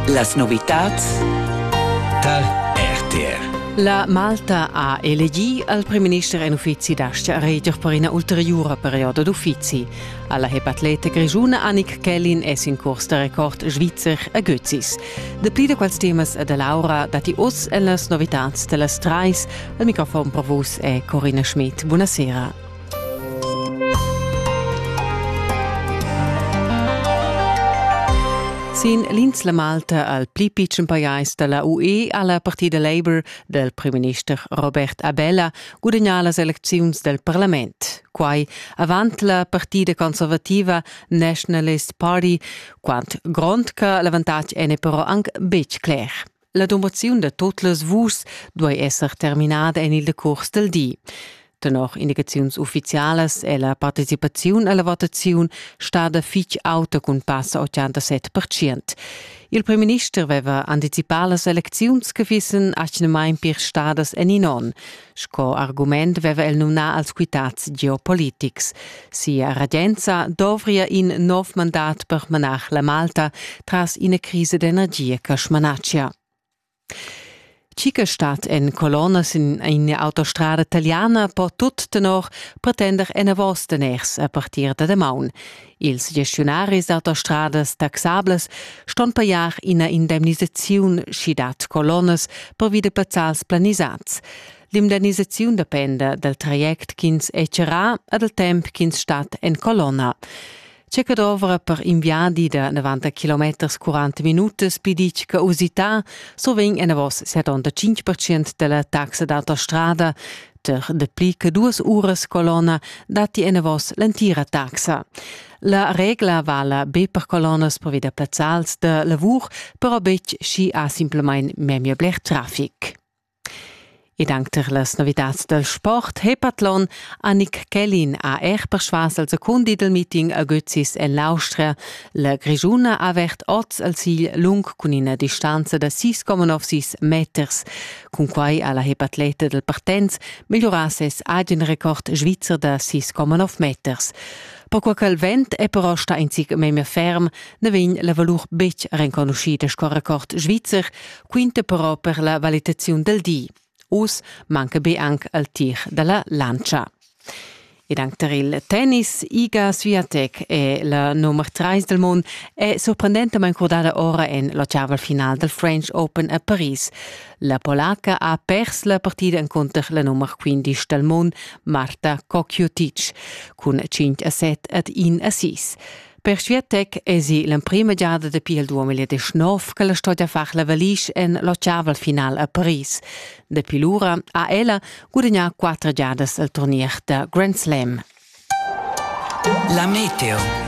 Las novitads tar RTR. La Malta ha elegì al primminister en uffizi d'astga a reger per ina ulteriura perioda d'uffizi. Alla hepatleta grischuna Annik Kellin es in curs da record svizzer a Götzis. Dapli da quels temas e da Laura datti oz en las novitads da las trais. Il microfon per vus è Corina Schmidt. Buonasera. Sin l'insla Malta al pli pitschen pajais da la UE ha la partida Labour dal primminister Robert Abela gudagnà las elecziuns dal parlament. Quai avant la partida conservativa Nationalist Party, quant grond che l'avantatg è però anc betg cler. La domaziun da tot las vus duei esser terminada en il decurs del di. Tenor indicaziuns ufficialas è la participaziun alla votaziun stada fitg auta cun passa 87%. Il premierminister aveva anticipà las elecziuns che fissen atgnamain pir stadas en in onn. Sco argument veva el numnà als quitads geopolitics. Sia regenza dovria in nov mandat per manar la Malta tras ina crisa d'energia che smanatschia. Cickerstadt en colonna sin eine Autostrada italiana po tut tenor pretender enavos daners a partir da damaun. Ils gestiunaris d'autostradas taxables ston pajar ina indemnisaziun sch'i dat colonnas pervi da pazzals planisads. L'indemnisaziun dependa dal traject ch'ins è charrà e dal temp ch'ins stat en colonna. Tge che dovra per in viadi da 90 km 40 minutas pli ditg che usità, so vegn enavos 75% della taxa d'autostrada, Suenter dapli che duas uras colonna datti enavos l'entira taxa. La regla vala be per colonnas provida plazzals da lavur, però betg schi ha simplamain memia bler traffic. Ed anche per las novitads dal sport Hepatlon Annik Kellin ha er persvas al secondi del meeting a Götzis en l'Austria. La Grischuna ha avert oz al sigl lung cun ina distanza da 6,96 meters. Cunquai ha la hepatleta dal Partens migliurà ses agen record svizzer da 6,9 meters. Perquai ch'el vent è però stà in zic memia ferm, na vegn la valur betg renconuschida sco record svizzer, quinta però per la valitaziun dal di. Uss manca be anc il tir da la lantscha. Ed anc tar il tennis, Iga Swiatek è la nummer 3 del mund, è surprendentamain crudada ora en la chaval final dal French Open a Paris. La polaca ha pers la partida encunter la nummer 15 dal mund, Marta Kokjutic, cun 5 a 7 ad 1 a 6. Per Sviatec esi l'emprima giada dapi il 2019 che la storia far la valisch en l'occiaval final a Paris. Dapi lura ha ella gudagnà quattro giadas il turnier da Grand Slam. La Meteo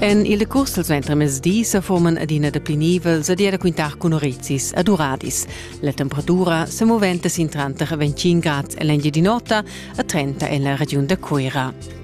En il curs del ventremezdi se forman adina de pli nivels ad era quintar cun orizis ad uradis. La temperatura se moventa sin tranter 25 grads en l'Engiadinota e 30 en la regiun de Cuira.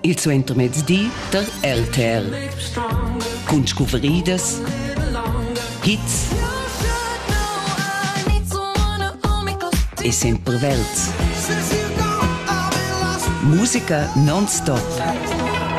il suentermezdi tar LTR. Cun scuveridas, hits e sempre verds. Musica non-stop.